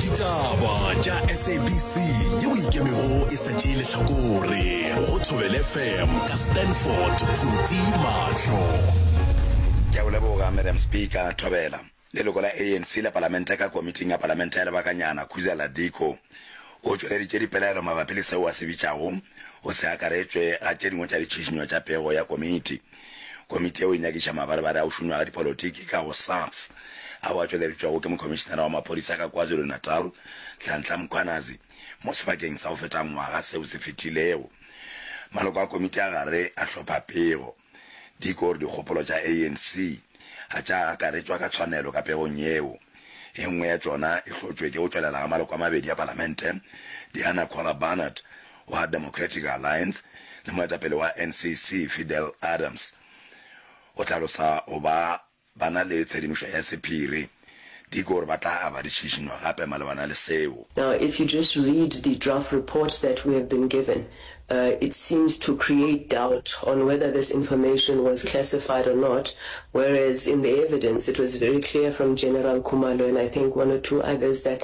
ditaba tša sabc yeo ikemego e sa tšee lehlakore go thobele fm ka stanford phuti mahlo ke a o leboga madam speaker thobela leloko la anc la palamente ka komiting ya palamente ya lebakanyana khuzela diko o tšweleditše dipelaelo mabapi le seo a se bitšago go se akaretšwe ga tše dingwe tša ditšhišinyo tša pego ya komiti Komiti yeo e nyakiša mabarebare ao šunwaga dipolotiki ka go SAPS ao a tšweleditšwego ke Mokhomišinara wa Maphodisa ka KwaZulu-Natal, Nhlanhla Mkhwanazi, mo sebakeng sa go feta ngwaga seo se fetilego. Maloko a komiti a gare a hlopha pego. Dick o re dikgopolo tša ANC ga tša akaretšwa ka tshwanelo ka pegong yeo. E nngwe ya tšona e hlotšwe ke go tšwelela ga maloko a mabedi a palamente, Diana Kwala Barnard wa Democratic Alliance le moetapele wa NCC Fidel Adams o hlalosa go ba ba na le tshedimošo ya sephiri di ke gore ba tla aba di šišinywa gape malebana le seo. Now if you just read the draft report that we have been given, uh, it seems to create doubt on whether this information was classified or not, whereas in the evidence it was very clear from General Khumalo and I think one or two others that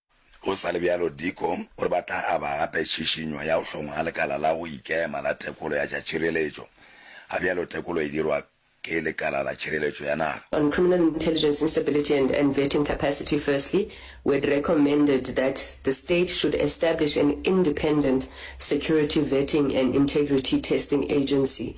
Go sa le bjalo, Diko o re ba tla aba gape tšhišinyo ya go hlongwa ga lekala la go ikema la tekolo ya tša tšhireletšo, ga bjalo tekolo e dirwa ke Lekala la Tšhireletšo ya Naga. On criminal intelligence instability and and vetting capacity, firstly, we had recommended that the state should establish an independent security vetting and integrity testing agency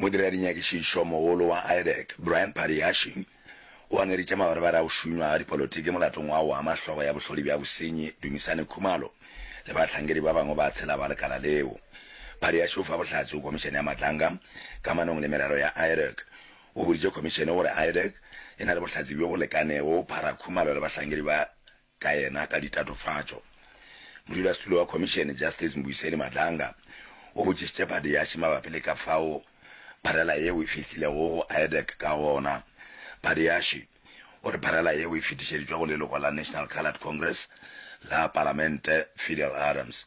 Modira-dinyakišišomogolo wa IDEC, Brian Paddyashian, o angeditše mabarebare a go šunywa ga dipolotiki molatong wa go ama hlogo ya bohlodi bja bosenyi, Dumisani Khumalo, le bahlankedi ba bangwe ba tshela ba lekala leo. Paddyashian o fa bohlatse go Khomišene ya Matlanga kamanong le merero ya IDEC. O boditše Khomišene gore IDEC e na le bohlatse bjo bo lekanego go phara Khumalo le bahlankedi ba ka yena ka ditatofatšo. Modulasetulo wa Khomišene, Justice Mbuyiseni Madlanga, o botšišitše Badiashi mabapi le ka fao pharela yeo e fihlilego go IADEC ka gona. Badiashi o re pharela yeo e fetišeditšwe go leloko la National Coloured Congress la Palamente, Fidel Adams.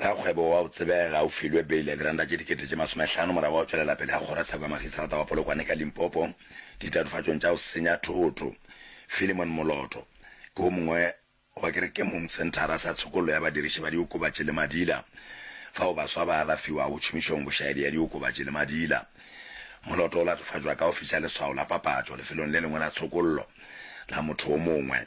Rakgwebo wa o tsebega o filwe beile diranta tše dikete tše masomehlano morago ga go tšwelela pele ga kgorotsheko ya magistrata wa Polokwane ka Limpopo ditatofatšong tša go senya thoto. Philemon Moloto ke wo mongwe wa kerekemong senthara sa tshokollo ya badiriši ba diokobatši le madila fao baswa ba alafiwago tšhomišong bošaedi ya diokobatši le madila. Moloto o latofatšwa ka go fiša leswao la papatšo lefelong le lengwe la tshokollo la motho wo mongwe.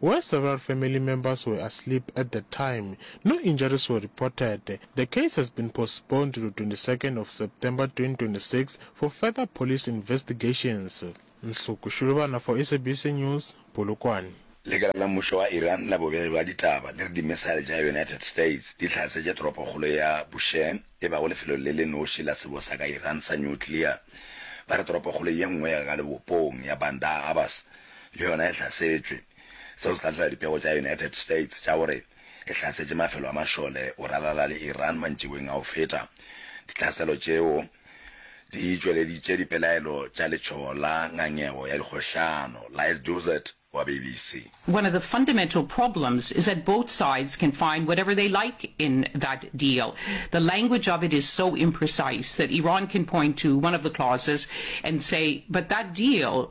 where several family members were asleep at the time, no injuries were reported. The case has been postponed to the twenty second of September twenty twenty six for further police investigations. Nsuku Shulubana for SABC News, Polokwane. Lekala la mmušo wa Iran la bobegelo ya ditaba le re dimisaele tša United States di hlasetše toropokgolo ya Bushehr e bago lefelong le le noši la sebosa ka Iran sa nuclear. Ba re toropokgolo ye nngwe ya ka lebopong ya Bandar Abbas le yona e hlasetšwe. Seo se tla tlela dipego tša United States tša gore e hlasetše mafelo a mašole go ralala le Iran mantšiboeng a go feta. Ditlhaselo tšeo di tšweleditše dipelaelo tša letšhogo la ngangego ya dikgohlano la Ed Durzett wa BBC. One of the fundamental problems is that both sides can find whatever they like in that deal. The language of it is so imprecise that Iran can point to one of the clauses and say, but that deal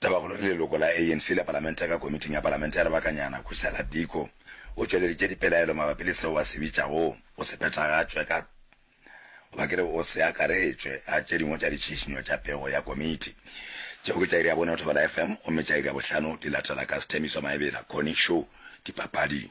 Tabakgolo le leloko la ANC la palamente ka komiting ya palamente ya lebakanyana, Khusela Diko o tšweleditše dipelaelo mabapi le seo a se bitšago go se phethagatšwe ka goba ke re o se akaretšwe ga tše dingwe tša ditšhišinyo tša pego ya komiti. Tšeo ke tša iri ya bone go Thobela FM gomme tša iri ya bohlano di latela ka Sthembiso Maebela, Connie Show, dipapading.